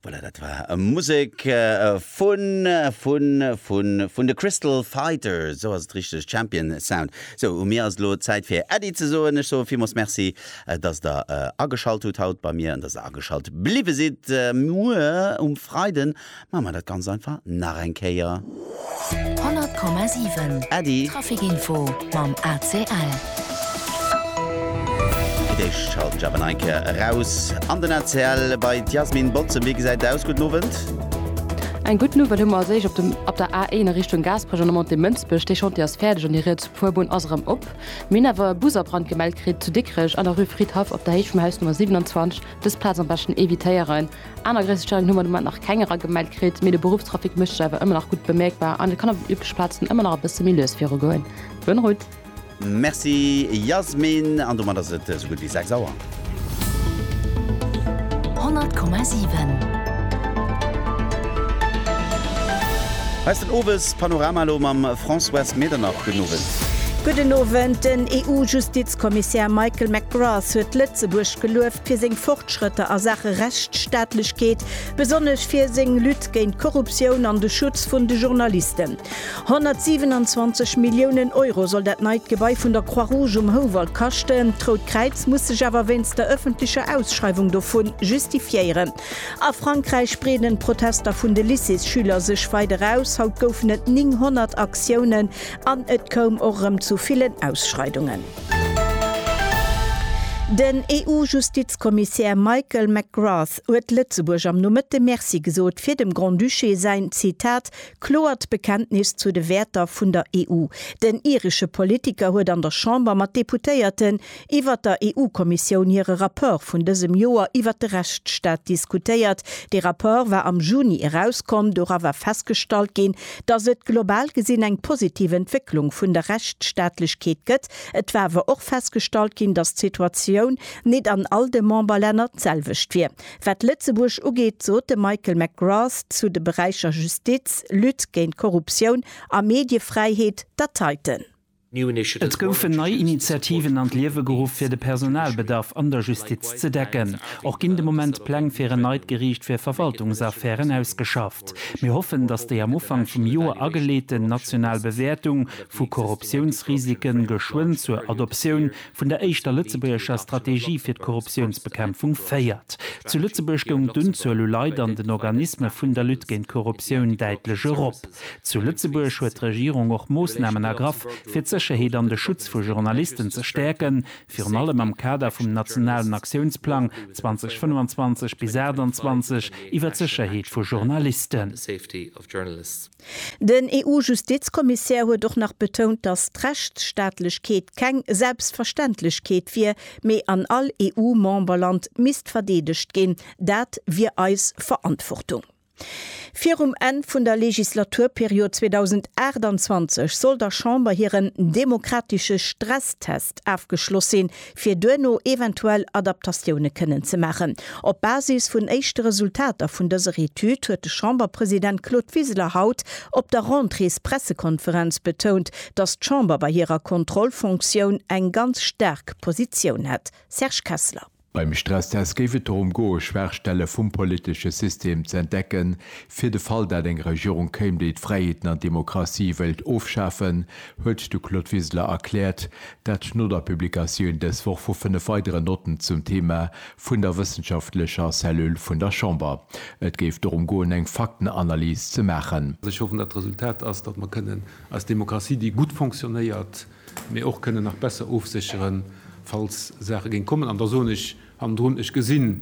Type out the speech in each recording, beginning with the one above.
Voilà, dat war Musek vun, vun, vun, vun de Crystal Fighters, esou ass et richteg, Champion Sound. Esou, u mir ass elo Zäit fir Äddi ze soen. Ech soe villmools Merci, datt der ageschalt hutt haut bei mir an datt der ageschalt bliwwe sidd. Muer um Freiden Maache mer dat ganz einfach nach eng Kéier. 100,7 Äddi. Trafikinfo mam ACL. Fir d'éischt schalten ech awer nach eng Kéier eraus an den ACL bei d'Yasmine Bozem. Wéi gesäit et aus? Gudden Owend. Eng gudden Owend. Hu mer als éischt op der A1 a Richtung Gaasperech an der Montée Mënsbech. Dee Chantier ass fäerdeg an déi riets Fuerbunn ass erëm op. Mir hunn awer e Bus a Brand gemellt kritt zu Dikrech an der Rue Fridhaff op der Héicht vum Haus Nummer 27. Dës Plaz am beschten evitéieren. Aner gréisser Steieren hu mer de Moment nach keng eragemellt kritt, mee de Beruffstrafic mécht sech awer ëmmer nach gutt bemierkbar an et kann op den übleche Plazen ëmmer nach e bësse méi lues viru goen. Bonne route! Merci Yasmin, an domat ass et esou gutt wéi 6 Auer. 100,7. Hei ass den Owes Panorama elo mam Françoise Medernach. Gudden Owend. Gudden Owend. Den EU-Justizkommissär Michael McGrath huet Lëtzebuerg geluef, fir seng Fortschrëtter a Saache Rechtsstaatlechkeet, besonnesch fir seng Lutte géint d'Korruptioun an de Schutz vun de Journalisten. 127 Milliounen Euro soll dat neit Gebai vun der Croix-Rouge um Houwald kaschten. D'Rout Kräiz muss sech awer wéinst der ëffentlecher Ausschreiwung dovu justifiéieren. A Frankräich breeden d'Protester vun de Lycéesschüler sech weider aus. Haut goufen et 900 Aktiounen an et koum och erëm zu villen Ausschreidungen. Den EU-Justizkommissär Michael McGrath huet Lëtzebuerg am Nomëtte Merci gesot fir dem Grand-Duché säin, Zitat, kloert Bekenntnis zu de Wäerter vun der EU. Den iresche Politiker huet an der Chamber mat Deputéierten iwwer der EU-Kommissioun hire Rapport vun dësem Joer iwwer de Rechtsstaat diskutéiert. Dee Rapport war am Juni erauskomm. Dora war festgestallt ginn, dass et global gesinn eng positiv Entwécklung vun der Rechtsstaatlechkeet gëtt. Et war awer och festgestallt ginn, dass d'Situatioun nit an all de Memberlänner d'selwecht wier. Wat Lëtzebuerg ugeet, sot de Michael McGrath zu de Beräicher Justiz, Lutte géint d'Korruptioun a Mediefräiheet, Dateiten. Et goufen nei Initiativen an d'Liewe geruff, fir de Personalbedarf an der Justiz ze decken. Och ginn de Moment Pläng fir en neit Geriicht fir Verwaltungsaffären ausgeschafft. Mir hoffen, datt déi am Ufank vum Joer ageleeten national Bewäertung vu Korruptiounsrisike geschwënn zur Adoptioun vun der éischter lëtzebuergescher Strategie fir d'Korruptiounsbekämpfung féiert. Zu Lëtzebuerg goung d'Unzuel u Leit an den Organisme vun der Lutte géint d'Korruptioun däitlech erop. Zu Lëtzebuerg huet d'Regierung och Moossnamen ergraff, fir d'Sécherheet an de Schutz vu Journalisten ze stäerken, virun allem am Kader vum nationalen Aktiounsplang 2025 bis 28 iwwer d'Sécherheet vu Journalisten. Den EU-Justizkommissär huet och nach betount, datt d'Rechtsstaatlechkeet keng Selbstverständlechkeet wier, mee an all EU-Memberland misst verdeedegt ginn. Dat wier eis Verantwortung. Virum Enn vun der Legislaturperiod 2028 soll der Chamber hiren demokratesche Stresstest afgeschloss sinn, fir duerno eventuell Adaptatioune kënnen ze maachen. Op Basis vun éischte Resultater vun dëser Etüd huet de Chamberpresident Claude Wiseler haut op der Rentréespressekonferenz betount, datt d'Chamber bei hirer Kontrollfonktioun eng ganz staark Positioun hätt. Serge Kessler. Beim Stresstest géif et dorëm goe Schwaachstelle vum politesche System ze entdecken, fir de Fall dat eng Regierung kéim, déi d'Fräiheeten an d'Demokratie wéilt ofschafen, huet de Claude Wiseler erkläert, Dat schnot a Publikatioun dës Woch vu fënnef weideren Notten zum Thema vun der wëssenschaftlecher Cellule vun der Chamber. Et géif dorëm goen, eng Faktenanalys ze maachen. Ech hoffen, datt d'Resultat ass, datt mer kënnen eis Demokratie, déi gutt fonctionnéiert, mee och kënnen nach besser ofsécheren, falls Saache géing kommen. An da soen ech hannendrun, Ech gesinn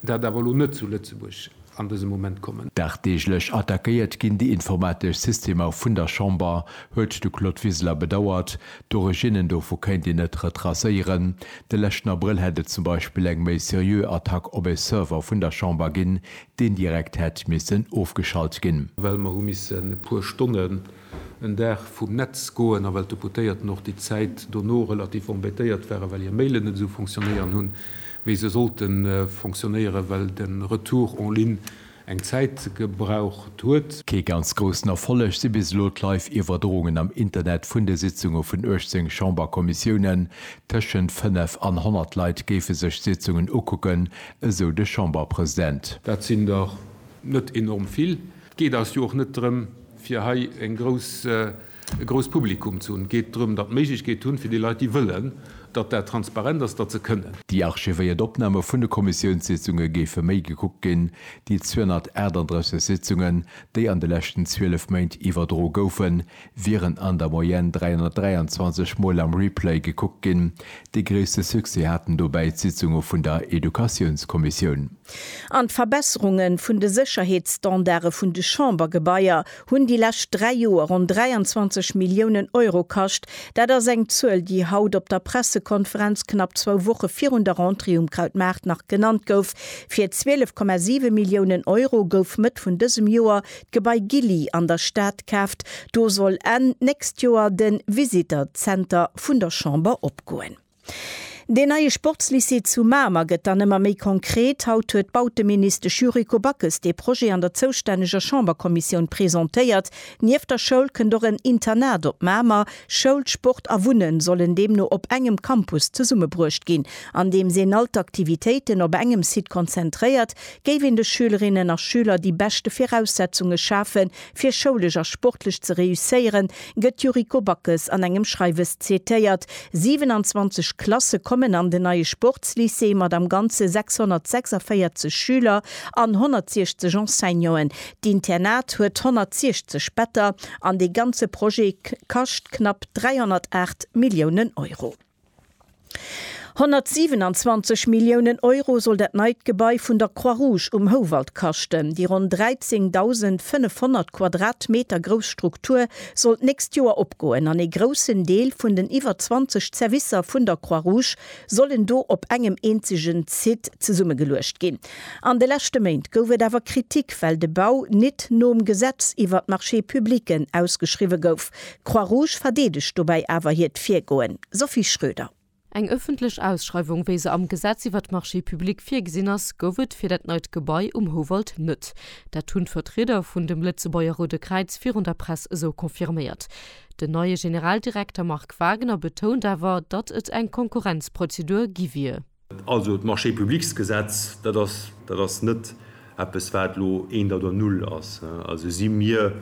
Dat awer elo net zu Lëtzebuerg an dësem Moment kommen. Dagdeeglech attackéiert ginn déi informatesch Systemer vun der Chamber, huet de Claude Wiseler bedauert. D'Originnen dovu kéint een net retracéieren. De leschten Abrëll hätt et zum Beispill eng méi seriö Attack op e Server vun der Chamber ginn, deen direkt hätt missen ofgeschalt ginn. Well mer hu missen e puer Stonnen en Dag vum Netz goen, a well d'Deputéierten och déi Zäit dono relativ embêtéiert waren, well hir Mailen net esou fonctionnéieren hunn, wéi se sollte fonctionnéieren, well de Retour en ligne eng Zäit gebraucht huet. Kee ganz groussen Erfolleg si bis elo d'Live-Iwwerdroungen am Internet vun de Sitzunge vun 18 Chamberkommissiounen. Tëschent 5 an 100 Leit géife sech d'Sitzungen ukucken, esou de Chamberpresident. Dat sinn der net enorm vill. Et geet eis jo och net drëm, Fir hei e grouss Publikum ze hunn, geet drëm, datt Méiglechkeet hunn, fir déi Leit, déi wëllen, datt dat transparent ass, datt se kënnen. Déi archivéiert Opname vun de Kommissiounssitzunge géife méi gekuckt ginn, déi 238 Sitzungen, déi an de leschten 12 Méint iwwerdro goufen, wieren an der Moyenne 323 Mol am Replay gekuckt ginn. Dee gréisste Succès haten dobäi d'Sitzunge vun der Educatiounskommissioun. An d'Verbesserunge vun de Sécherheetsstandarde vun de Chambergebaier hunn déi lescht dräi Joer ronn 23 Milliounen Euro kascht. Dat ass eng Zuel, déi haut op der Pressekonferenz knapp zwou Woche virun der Rentrée um Krautmaart nach genannt gouf. Fir 12,7 Milliounen Euro gouf Mëtt vun dësem Joer d'Gebai Gilly an der Stad kaaft. Do soll Enn d'nächst Joer de Visitor Center vun der Chamber opgoen. Deen neie Sportslycée zu Mamer gëtt dann ëmmer méi konkret. Haut huet d'Bauteministesch Yuriko Backes dee Projet an der zoustänneger Chamberkommissioun presentéiert. Nieft der Schoul kënnt och en Internat op Mamer. Schoul, Sport a Wunne sollen deemno op engem Campus zesummebruecht ginn. Andeems een all d'Aktivitéiten op engem Site konzentréiert, géif een de Schülerinnen a Schüler déi beschte Viraussetzunge schafen, Fir schoulesch a sportlech ze reusséieren, gëtt d'Yuriko Backes an engem Schreiwes zitéiert. 27 Klasse kommen an den neie Sportslycée mat am Ganze 646 Schüler an 160 Enseignanten. D'Internat huet 160 Better an dee ganze Projet kascht knapp 308 Milliounen Euro. 127 Milliounen Euro soll dat neit Gebai vun der Croix-Rouge um Houwald kaschten. Déi ronn 13.500 Quadratmeter grouss Struktur soll d'nächst Joer opgoen an ee groussen Deel vun den iwwer 20 Zerwisser vun der Croix-Rouge sollen do op engem eenzegen Site zesummegeluecht ginn. An de leschte Méint gouf et awer Kritik, well de Bau nit nom Gesetz iwwert d'Marchés publics ausgeschriwwe gouf. D'Croix Rouge verdeedegt dobäi awer hiert Virgoen. Sophie Schröder. Eng ëffentlech Ausschreiwung, wéi se am Gesetz iwwert d'Marchés publics virgesinn ass, gouf et fir dat neit Gebai um Houwald net. Dat hunn d'Vertrieder vun dem Lëtzebuerger Roude Kräiz virun der Press esou confirméiert. Den neie Generaldirekter Marc Wagener betount awer, datt et eng Konkurrenzprozedur gi wier. Also d'Marché-publics-Gesetz, dat ass, dat ass net eppes, wat elo eent oder null ass. Also si mir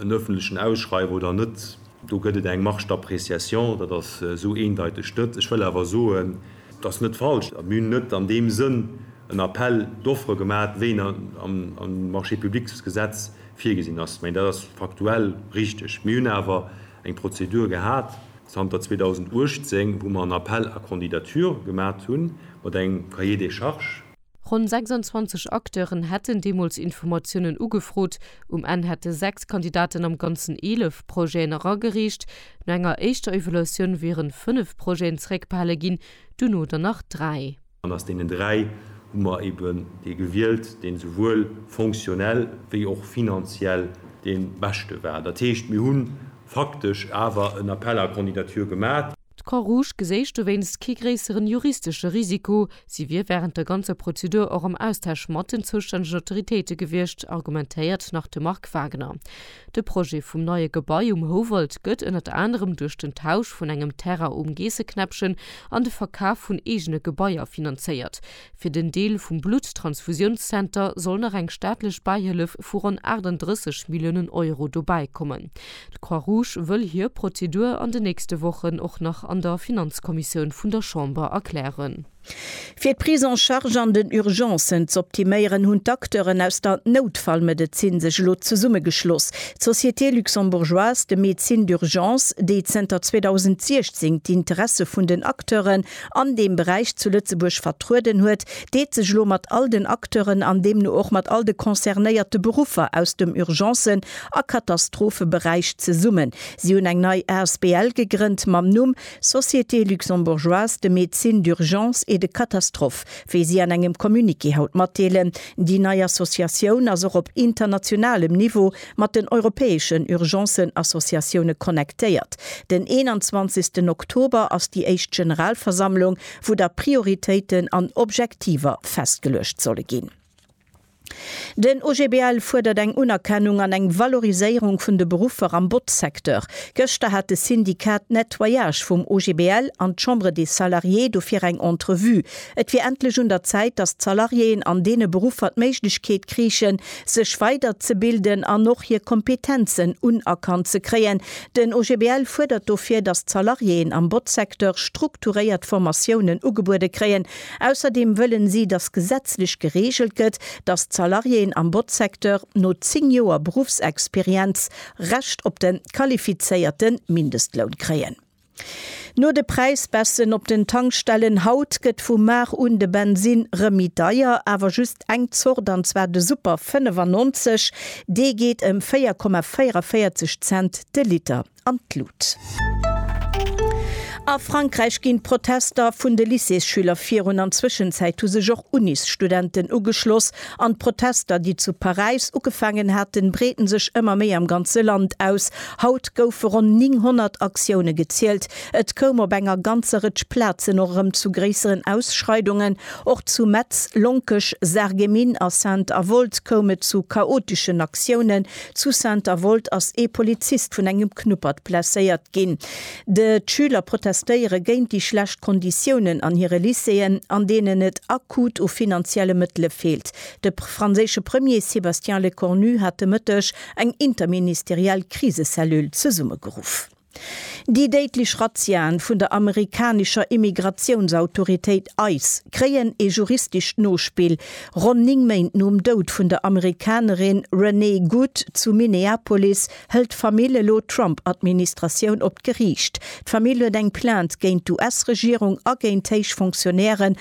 en öffentlechen Ausschreiwer oder net, do gëtt et eng Marge d'appréciation, dat ass esou eendeiteg net. Ech wëll awer soen, et ass net falsch, mir hunn net an deem Sënn en Appel d'offres gemaat, wéi en am Marché-publics-Gesetz virgesinn ass. Mä dat ass faktuell richtig. Mir hunn awer eng Prozedur gehat, zanter 2018, wou mer en Appel à candidatures gemat hunn, mat engem Cahier des charges. Ronn 26 Acteuren hätten deemools Informatiounen ugefrot. Um Enn hätte sechs Kandidaten am Ganzen eelef Projeten eragereecht. No enger éischter Evaluatioun wieren fënnef Projeten zeréckbehale ginn, duerno der nach dräi. An aus deenen dräi hu mer eben dee gewielt, deen esouwuel fonctionnel wéi och finanziell dee beschte war. Dat heescht, mir hu faktesch awer en Appel à candidatures gemat. D'Croix-Rouge geséich dowéinst kee gréisseren juristesche Risiko. Si wier während der ganzer Prozedur och am Austausch mat den zoustännegen Autoritéite gewiescht, argumentéiert nach de Marc Wagner. De Projet vum neie Gebai um Houwald gëtt ënnert anerem duerch den Tausch vun engem Terrain um Geesseknäppchen an de Verkaf vun eegene Gebaier finanzéiert. Fir den Deel vum Blutttransfusiounszenter soll nach eng staatlech Bäihëllef vu ronn 38 Milliounen Euro dobäi kommen. D'Croix-Rouge wëll hir Prozedur an den nächste Wochen och nach an der Finanzkommissioun vun der Chamber erklären. Fir d'Prise en charge an den Urgencen z'optiméieren, hunn d'Acteuren aus der Noutfallmedezin sech elo zesummegeschloss, d'Société luxembourgeoise de médecine d'urgence, déi zënter 2016 d'Interesse vun den Acteuren an deem Beräich zu Lëtzebuerg vertrueden huet, deet sech elo mat all den Acteuren an deemno och mat all de concernéierte Beruffer aus dem Urgencen a Katastropheberäich zesummen. Si hunn eng nei asbl gegrënnt mam Numm Société luxembourgeoise de médecine d'urgence et de catastrophe, wéi si an engem Communiqué haut matdeelen. Déi nei Associatioun ass och op internationalem Niveau mat den europäeschen Urgencen-Associatioune connectéiert. Den 21 Oktober ass déi éischt Generalversammlung, wou da Prioritéiten an Objektiver festgeluecht solle ginn. Den OGBL fuerdert eng Unerkennung an eng Valoriséierung vun de Beruffer am Botzsecteur. Gëschter hat de Syndicat Nettoyage vum OGBL an d'Chambre des Salariés dofir eng Entrevue. Et wier endlech un der Zäit, datt d'Salariéen an deene Beruffer d'Méiglechkeet kriichen, sech weiderzebilden an och hir Kompetenzen unerkannt ze kréien. Den OGBL fuerdert dofir, datt d'Salariéen am Botzsecteur strukturéiert Formatiounen ugebuede kréien, Ausserdeem wëllen si, datt gesetzlech gereegelt gëtt, datt d'Salariéen am Botzsecteur no 10 Joer Beruffsexperienz Recht op de qualifizéierte Mindestloun kréien. No de Präisbaissen op den Tankstellen haut gëtt vu mar un de Bensinn rëm méi deier, awer just eng Zort, an zwar de Super 95. Dee geet ëm 4,44 Cent de Liter. an d'Lut. A Frankräich ginn d'Protester vun de Lycéesschüler virun. An Zwëschenzäit hu sech och Unisstudenten ugeschloss. An d'Protester, déi zu Paräis ugefaangen haten, breeten sech ëmmer méi am ganze Land aus. Haut goufe ronn 900 Aktioune gezielt. Et koum op enger ganzer Rëtsch Plazen och erëm zu gréisseren Ausschreidungen. Och zu Metz, Lonkech, Sarreguemines a Sainte-Avold koum et zu chaoteschen Aktioune Zu Saint-Avold ass ee Polizist vun engem Knuppert blesséiert ginn. De Schüler protestéiere géint déi schlecht Konditiounen an hire Lycéeën, an deenen et akut u finanzielle Mëttele feelt. De franséische Premier Sébastien Lecornu hat de Mëtteg eng interministeriell Krisecellule zesummegeruff. Déi déidlech Razziaen vun der amerikanescher Immigratiounsautoritéit ice kréien ee juristescht Nospill, Ronn 9 Méint nom Doud vun der Amerikanerin Renee Good zu Minneapolis hëlt d'Famill elo d'Trump-Administratioun op d'Geriicht. D'Famill huet eng Plainte géint d'US-Regierung a géint héich Fonctionnairen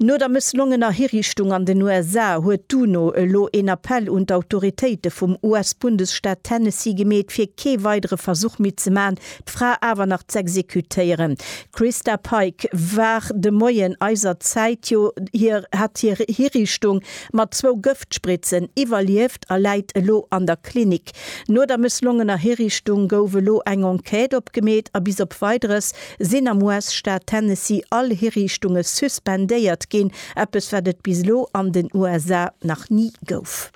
No der mësslongener Hiriichtung an den USA huet d'UNO elo een Appell un d'Autoritéite vum US-Bundesstaat Tennessee gemeet, fir kee weidere Versuch méi ze maachen, d'Fra awer nach z'exekutéieren. Christa Pike war de Moien eiser Zäit jo hir hat hir Hiriichtung mat zwou Gëftspritzen iwwerlieft a läit elo an der Klinik. No der mësslongener Hiriichtung gouf elo eng Enquête opgemeet a bis op Weideres sinn am US-Staat Tennessee all Hiriichtunge suspendéiert ginn, eppes wat et bis elo an den USA nach ni gouf.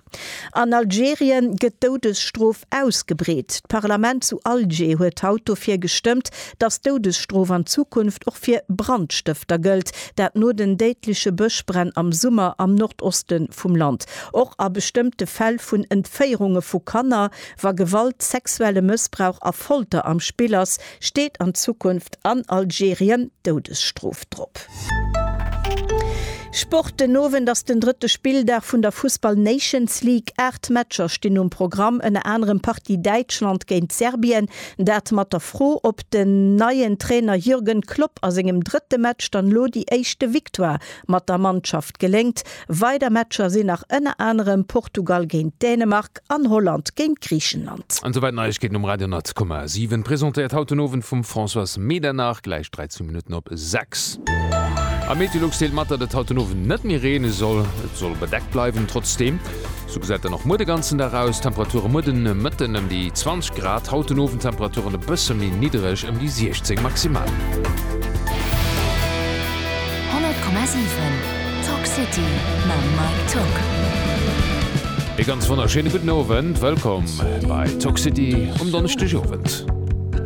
An Algerien gëtt d'Doudesstrof ausgebreet. D'Parlament zu Alger huet haut dofir gestëmmt, datt d'Doudesstrof an Zukunft och fir Brandstëfter gëllt, dat no den déidleche Bëschbränn am Summer am Nordoste vum Land. Och a bestëmmte Fäll vun Entféierunge vu Kanner, wa Gewalt, sexuelle Mëssbrauch a Folter am Spill ass, Steet an Zukunft an Algerien d'Doudesstrof drop? Sport, Den Owend ass den drëtte Spilldag vun der Fussball Nations League. Aacht Matcher stinn um Programm, ënner anerem Partie Däitschland géint Serbien. Dat mat der Fro, ob den neien Trainer Jürgen Klopp a sengem drëtte Match dann elo déi éischte Victoire Mat der Mannschaft geléngt. Weider Matcher sinn nach ënner anerem Portugal géint Dänemark an Holland géint Griichenland. An souwäit Neiegkeeten um Radio 100,7, presentéiert haut den Owend vum Françoise Medernach, gläich 13 Minutten op 6. A Meteolux deelt mat, datt et haut den Owend net méi reene soll. Et soll bedeckt bleiwen, trotzdeem. Sou gesäit dann och muer de ganzen Dag aus. D'Temperature muer de Mëtten ëm déi 20 Grad, haut den Owend Temperaturen e bësse méi niddereg, ëm déi 16 maximal. 100,7 Talk City mam Mike Tock. Ee ganz wonnerschéine gudden Owend, wëllkomm bei Talk City um Donneschdegowend.